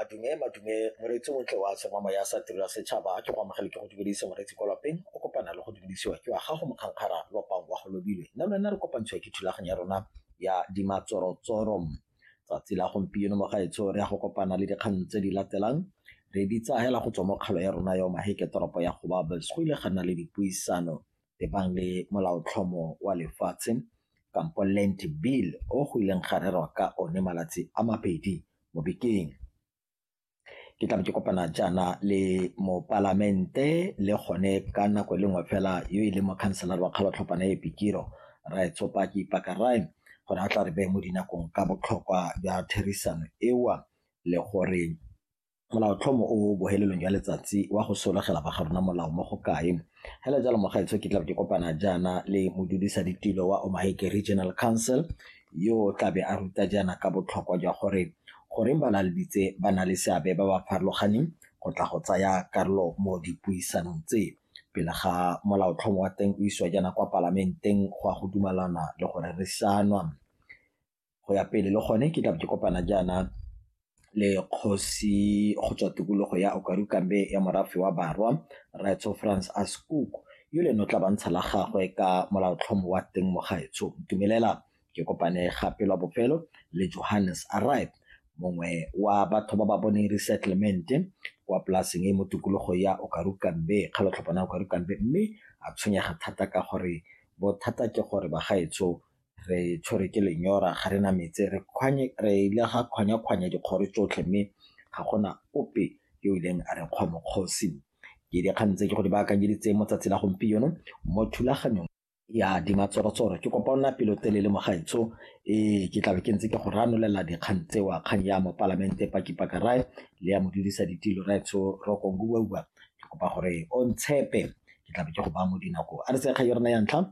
madume madume moreetsi o tle wa tshema moya sa tiro ya setšhaba ke go amogele ke go dumedise moreetsi kwa lapeng o kopana le go dumedisiwa ke wa gago mokgankgara lopang wa go lobilwe nna lwena re kopantshiwa ke thulaganyo ya rona ya dimatsorotsoro tsatsi la gompieno mo gaetsho re ya go kopana le dikgang tse di latelang re di tsagela go tswa mo kgalo ya rona ya maheke toropo ya go babels go ile ga nna le dipuisano e bang le molaotlhomo wa lefatshe kampo land bill o go ileng ga rerwa ka one malatsi a mabedi mo bekeng ke tlabe ke kopana jaana le mopalamente le gone ka nako e le nngwe fela yo e leng mokhanselara wa kgalotlhopana e pikiro rae tsopaki pakarae gore a tla re beye mo dinakong ka botlhokwa jwa therisano ewa le gore Molaotlhomo o o bohelelong jwa letsatsi wa go sologela ba garona molao mo go kae. Hele jalo mogaetsho ke tlabe ke kopana jaana le modudisa ditilo wa Omaheke Regional Council yo o tlabe a ruta jaana ka botlhokwa jwa gore goreng balaleditse ba na le seabe ba ba farologaneng go tla go tsaya karolo mo dipuisanong tse pele ga molaotlhomo wa teng o isiwa jaana kwa palamenteng go ya go dumalana le go rerisanwa. go ya pele le gone ke tla ke kopana jaana le kgosi go tswa tikologo ya okarukambe ya morafe wa barwa raetsho france ascook yo le no tla bantsha la gagwe ka molaotlhomo wa teng mo gaetsho dumelela ke kopane gape lwa bofelo le johannes arrive mongwe wa batho ba ba boneng resettlement kwa polaseng e mo tikologo ya okarukambe kgalotlhopana okarukambe mme a tshwenyega thata ka gore bothata ke gore bagaetsho re tshwere ke lenyora ga re na metse re ile ga kgwanya-kgwanya dikgoro tsotlhe mme ga gona ope yo o ileng a re kgwa mokgosi ke dikgang tse ke go di baakanyeditse mo tsatsi la gompieno mo thulaganyong ya dimatsorotsoro ke kopa o nna pelotelele mo gaetsho ee ke tlabe ke ntse ke go ranolela dikgang tsewa kgang ya mo palamente pakipaka rae le ya modudisa ditilo raetsho rokong uauba ke kopa gore o ntshepe ke tlabe ke go ba mo dinako a re sekga yona ya ntlha